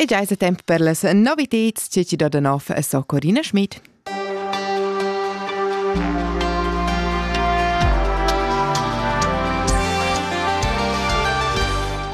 E già è tempo per las novitads, c'è ci do da nov a so Corina Schmidt.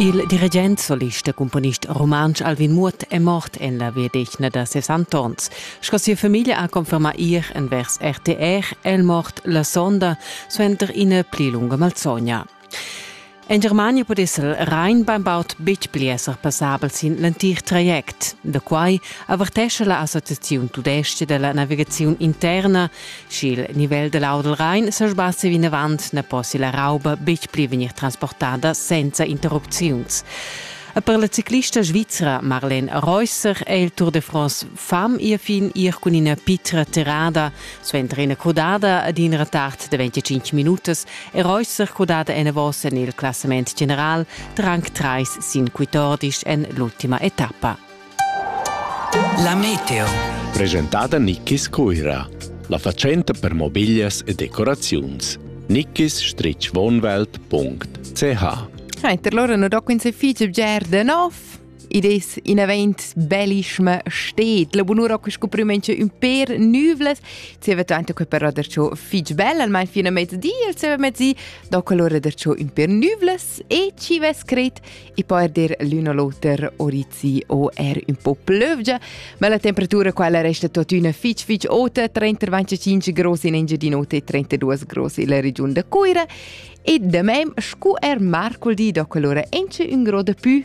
Il dirigent, solist e componist rumantsch Alvin Muot è mort en la viedecna da 60 ans. Sco sia famiglia ha confermà ir envers RTR è il mort la sonda suenter ina pli lunga malsogna. En Germania pudess el rein bainbaud betg pli esser passabel sin l'entir traject. Da quai avertescha la Associaziun tudestga della navigaziun interna, sch'il nivel da l'aua dal Rhein sa sbassi vinavant na possi la rauba betg pli vegnir transportada senza interrupziuns. E per la ciclista svizra Marlene Reusser è il Tour de France fam ir fin ir cun ina pitra tirada Suenter ina crudada ed in retard de 25 minutas è Reusser crudada enavos en il classament general de rang 3 sin 14 en l'ultima etappa. La meteo. Presentada Nickis Cuira, la facenta per mobiglias e decoraziuns. nickis-wohnwelt.ch Reiter, loro non do quin se fice bgerde, no? id es in event bellischma stet. La bunura che sco prümentscha ün per nüvlas. Zieva tanto che per radercio fich bel, almain fino a mezdi, il zieva mezdi, do quell'ora dercio ün per nüvlas e ci ve scrit e poi dir l'un o l'oter orizi o er un po plövgia, ma la temperatura quella resta tuttina fich fich ota, 35 grossi in Engiadinota e 32 grossi in la regiun da Cuira e de mem scu er marcoldi do quell'ora enche un gro de pü